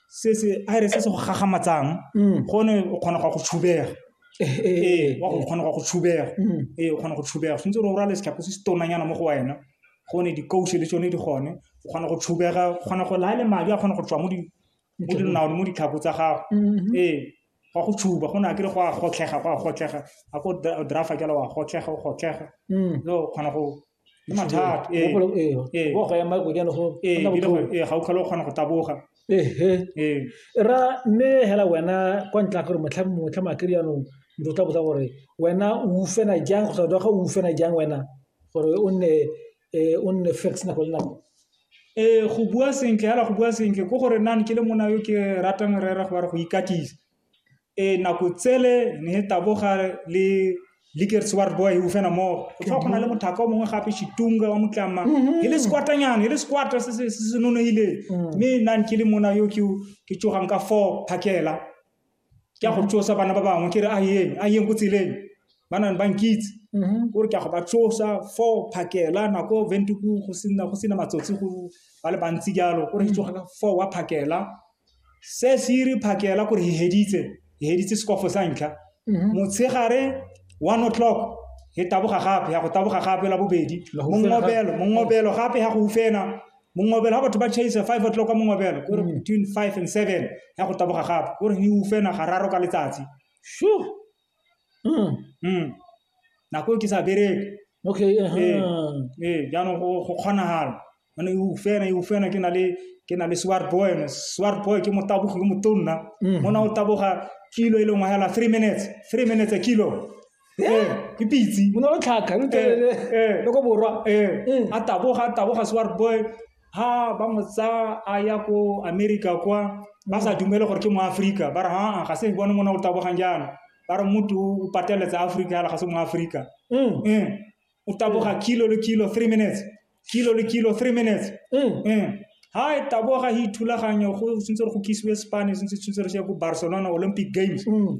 se se a re se se go gagamatsang Mm. gone o kgona go ya go tshubega Eh, eh, ee eh, wa go eh. kgona go ya go tshubega Mm. ee o kgona go tshubega tshwanetse gore o rale setlhako se se tonanyana mo go wena gone dikause le tsone di gone o kgona go tshubega o kgona go laya le madi a kgona go tswa mo di- mo dinaone mo ditlhako tsa gago Mhm. ee go go tshuba go ne a kere go a gotlhega go a gotlhega a ko drafa jalo wa gotlhega o gotlhega Mm. no o kgona go Ke mathata. Ee, Mogopolo, ee, ee. wa go ema go jalo go Ee, nna ebile botlhoko. go- ee, ga o tlhole o kgona go taboga Ehe. ee ra mme hela wena kwa ntle gore motlha motlha makiri yanong motho o tla botsa gore wena o ufena jang go sa ga o ufena jang wena gore o nne eh, o nne fix nako le nako ee go bua sentle hela go bua sentle ko gore nane ke le mona yo ke ratang rera go ba re go ikatisa Ee, nako tsele ne e taboga le Lickers wa re boa e ufena mo go tlhoa go na le mothaka o mongwe gape shitunga wa motlama e le sekwatanyana e le sekwata se se se se nonehile mme nang ke le mona yo ke ke tsogang ka four phakela ke a go tsosa bana ba bangwe ke re a yeng a yeng ko tseleng ba nang ba nkitse o re ke a go ba tsosa four phakela nako ventuku go sena go sena matsotsi go ba le bantsi jalo o re ke tsoga ka four wa phakela Se se re phakela gore he heditse, he heditse sekofo sa ntlha. Mhm. Motshegare 1 o'clock he taboga gape, ya go taboga gape la bobedi. Mongobelo, mongobelo gape ha go ufena. Mongobelo ha batho ba chase 5 o'clock ka mongobelo, gore mhm. between 5 and 7 ya go taboga gape. Gore he ufena gararo ka letsatsi. Sure. mm. mm. nako e ke sa bereke okay uh -huh. ee ee jaanong go go kgonagala ane e ufena e ufena ke na le ke na le swart boy ene swart boy ke motabogi yo motonna mm. mona o taboga kilo e lengwe hela three minutes three minutes a kilo ee ke pitse mona o tlhaka ee, ee. loko borwa ee mm. a taboga a taboga swart boy ha ba mo tsaya a ya ko america kwa ba sa dumele gore ke moaforika ba re haa ga se bone mona o tabogang jaana ba re motho o pateletsa aforika yala ga se moaforika Mm. Eh, o taboga kilo le kilo three minutes kilo le kilo three minutes Mm. Eh, ha e taboga e ithulaganyo go tshwanetse gore go kisiwe spane tshwanetse tshwanetse re sheye ko barcelona olympic games Mm.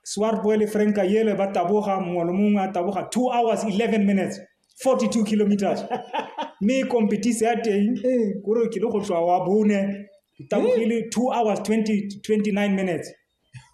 swartboy le franka yele ba taboga mongwe le mongwe a taboga two hours 11 minutes 42 kilometers mme e competise ya teng ee. kore ke le go tswa wa bone ke tabogile ee. two hours 20, 29 minutes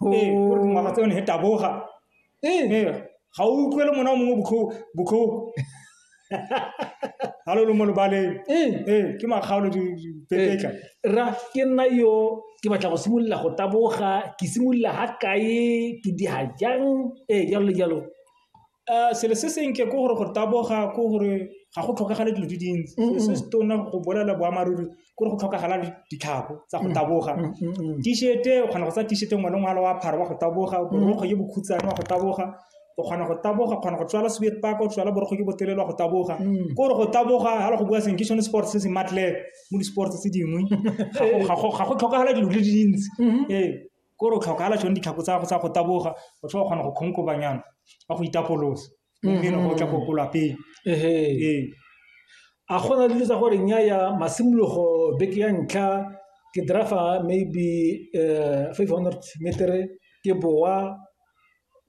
oh. ee kore dingwaga tse yone he taboga ee ga o utlwele mona o mongwe botlhoko ga lo lo mo lebaleng ee ke makgaolo dipepetla ra ke nna yo ke batla go simolola go taboga ke simolola ga kae ke diga jang ee jalo le jalo Uh, selo se senke ke gore gore taboga ke gore ga go tlhokagale dilo di dintsi mm-hmm. se se tona go bolela boammaaruri ke gore go tlhokagala ditlhako tsa go mm-hmm. taboga mm-hmm. t-shirte o kgona go tsa t-shirte ngwe le ngwalo wa phara wa go taboga borokgo ye bokhutsane wa go taboga o kgona go taboga kgona go tswala soviet park o tswala borokgo ke botelele wa go taboga mm. ke gore go taboga ga le go bua seng ke sone sports se se matlele mo di-sports tse dingwe ga go tlhokagala dilo di dintsi ee Ke gore o tlhokagala tsone ditlhako tsa gago tsa go taboga, o tlhoka go kgona go kgonkobanyana ka go itapolosa, mme e ne go tla go ko lapeng. Ee. A gona dilo tsa gore nnyaya masimologo beke ya ntlha ke driver maybe five hundred metre ke bowa.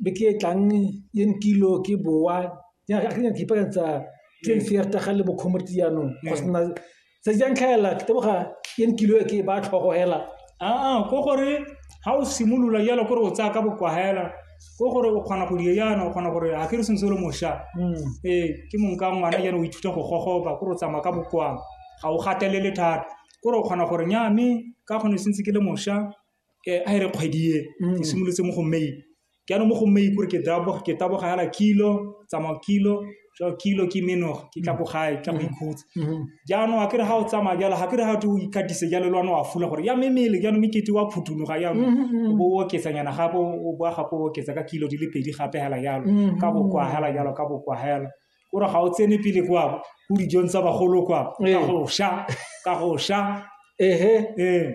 beke e tlang e nkilo ke bowa jaaka ke nyaka ipaakanyetsa ke ntshe ya rutaga le bocomrade jaanong go sena tse di jang tlhaela ke teboga e nkilo e ke e ba tlhogo hela aa ko gore ga o simolola jalo kore o tsaya ka bokwahela ko gore o kgona go di yana o kgona gore ga ke re sengwe se le mošwa ee ke mong ka ngwana jalo o ithuta go gogoba kore o tsamaya ka bokwang ga o gatelele thata kore o kgona gore nya mme ka kgone sentse ke le mošwa eh, a e re kgwedi e mm. e simolotse mo go may ke ano mo go may kore ke taboga ke taboga yana kilo tsamao kilo so kilo ke menoga ke tla ko mm. gae tla go mm-hmm. ikhutsa mm-hmm. jaanong a kere ga o tsamaya jalo ga kere ga te o ikatise jalo le wane wa fula gore ya memele jaanong mekete wa phutunoga jaanong mm-hmm. o bo o oketsanyana gape o boa gape o oketsa ka kilo di le pedi gape hela jalo ka bokwagela jalo ka bokwagela o re ga o tsene pele kwa ko dijong tsa bagolo kwa ka Ee. go sha ka go sha ehe ee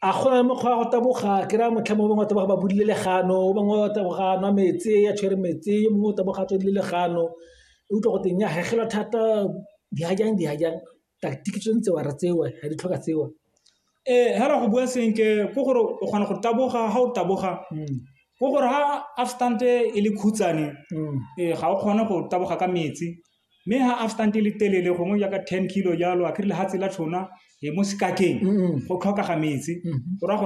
a go na le mokgwa wa go taboga ke raya motlha mongwe o bangwe wa taboga ba bodile legano o bangwe wa taboga a nwa metsi ya tshwere metsi yo mongwe o taboga a tswedile legano e utlwa go teng ya hegelwa thata dihajang dihajang tactic tse ntse wa re tsewa ga di tlhoka tsewa eh hela go bua senke ko gore o kgona go taboga ha o taboga mm. ko gore ha afstand e le khutsane mm. eh ga o kgone go taboga ka metsi mme ha afstand e le telele gongwe ya ka 10 kilo jalo a krile ha tsela tshona e mo sekakeng mm. go tlhoka ga metsi mm-hmm. o ra gore